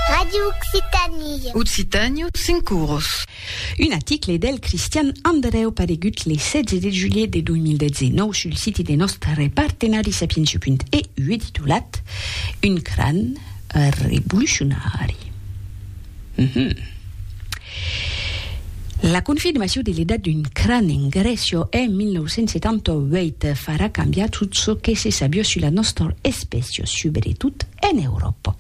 Radio Occitanie. Occitània, cinc cours. Un article del Cristian Andreu paregut le 16 de julhet de 2019 sul siti de nòstre partenari Sapientia.eu e titolat Un cran revolucionari. La confirmacion de l'edat d'un cran en Grècia en 1978 farà cambiar tot çò que se sabió sus la nòstra espècia, subretot en Euròpa.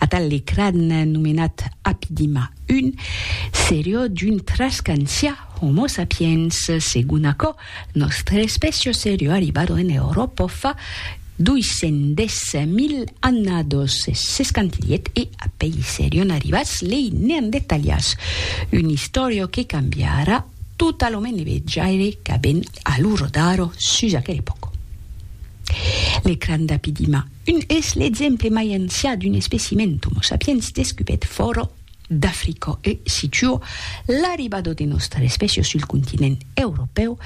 Atal de cran nomenat Apidima I serió d'un trascancià Homo sapiens, segon aquò Nòstre espècia seriu arribado en Euròpa fa 210.000 annados, s'escantilhèt e a pei serion arribats lei Neandertalians, una istòria que cambiarà tota lo menevejaire qu'avèn a lo rodaro sus aquel epòc. L'ecran d'Apidima, un es l'exemple mai ancià d'un especiment d'Homo sapiens descubèt fòra d'Africa e situa l'arribada de nòstra espècia sul continent europèu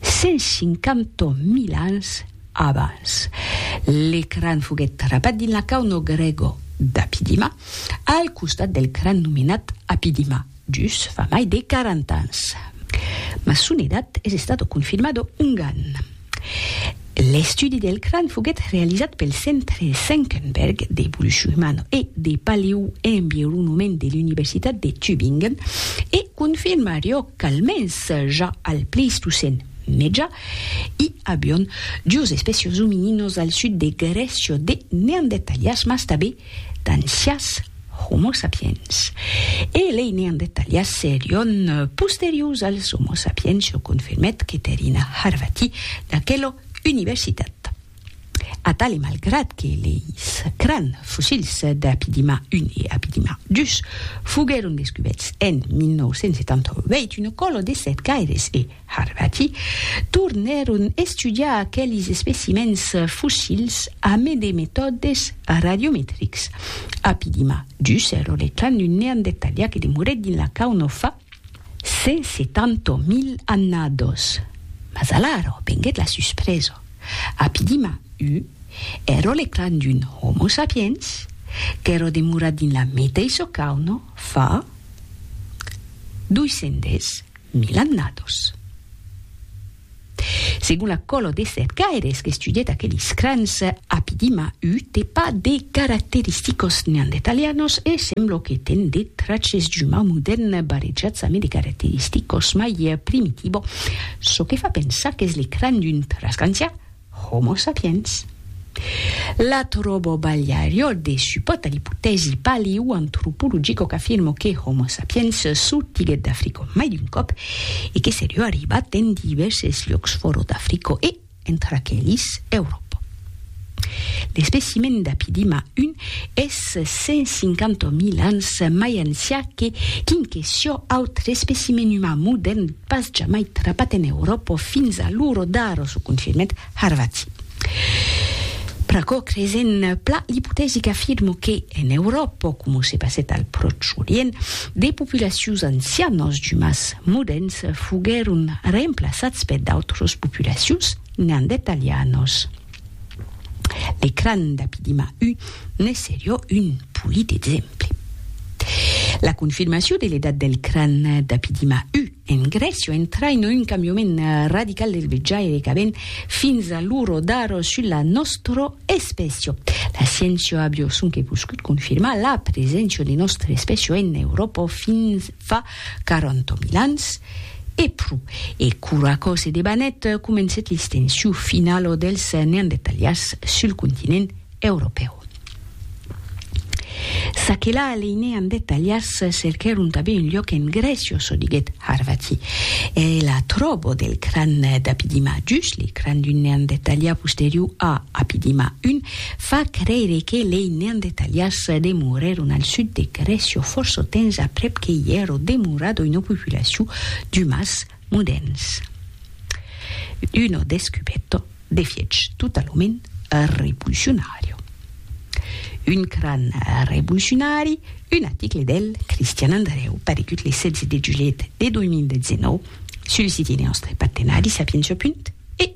150 mil ans abans. L'ecran foguèt trapat dins la cauna grèga d'Apidima, al costat del cran nomenat Apidima, dus fa mai de 40 ans. Mas son edat es estada confirmada ongan. L'estudi del cran foguèt realizat pel Centre Senckenberg d'Evolucion Humana e de Paleoenvironament de l'Universitat de Tübingen e confirmarió qu'almens ja al Pleistocèn Meja i avion dues espècias ominínos al sud de Grècia de Neandertalias mas tanben d'ancias Homo sapiens e lei Neandertalias serion posteriors als Homo sapiens, çò confirmèt Keterina Harvati d'aquela universitat. Atal e malgrat que leis cràn fossils d'Apidima I e Apidima ii foguèron descubèts en 1978, una còla de sèt gaires e, Harvati, tornèron estudiar aquelis especimèns fossils amé de metòdes radiometrics. Apidima, dus ero le clan d'un neandertalià que demorèt dins la cauna fa 170.000 annados. Mas alara venguèt la suspresa. Apidima, u ero le clan d'un Homo sapiens qu'ero demorat dins la meteissa cauna fa 210. Mil annados. Segon la colò de sèt gaires qu'estudièt aquelis crans, Apidima u te pas de caracteristicos neandertalianos e semblò que ten de traches d'umau modèrn barrejats amé de caracteristicos mai primitibo, çò que fa pensar qu'es le cran d'un trasgancian, Homo sapiens. La tròbo balhariò de supòt a l'ipotèsi paleoantropologico qu'afirmo que Homo sapiens sortiguèt d'Africò mai d'un còp e que serió arribat en divèrses lhòcs fòro d'Africò e, entre aquelis, Euròpa. L'especimen d'Apidima I es 150.000 ans mai ancià que quinquesio autre especimen uman modèrn. Pas jamai trapat en Euròpa o fins a l'uro d'ara, çò confirmèt Harvati. Pr'aquò creisèm plan l'ipotèsi qu'afirma que, en Euròpa, coma se passèt al Pròche Orient, de populacions ancianas d'umans moderns foguèron remplaçats per d'autras populacions neandertalianas. L'ecran d'Apidima U ne serió un polit exemple. La confirmacion de l'edat del cran d'Apidima U en Grècia entraina un cambiament radical del vejaire qu'avèn fins a luro dar sus la nòstra espècia. La sciéncia avió sonque poscut confirmar la preséncia de nòstra espècia en Euròpa fins fa quaranta mil ans, e pro, e qu'ura còse de banet comencet l'istenciu finalo dels neandertalians sul continent europèu. Çaquelà lei neandertalians cerquèron tanben un luòc en Grècia, çò diguèt Harvati, e la tròbo del cran d'Apidima, just le cran d'un neandertalià posterior a Apidima I, Fa creire que lei neandertalians demorèron al sud de Grècia fòrça temps aprèp que i èra demorada una populacion d'umans modèrns. Una descubèrta, d'efiech, totalament revolucionària. Un cran revolucionari, un article del Cristian Andrèu, paregut le 16 de julhet de 2019 sul siti de nòstre partenari Sapientia. E.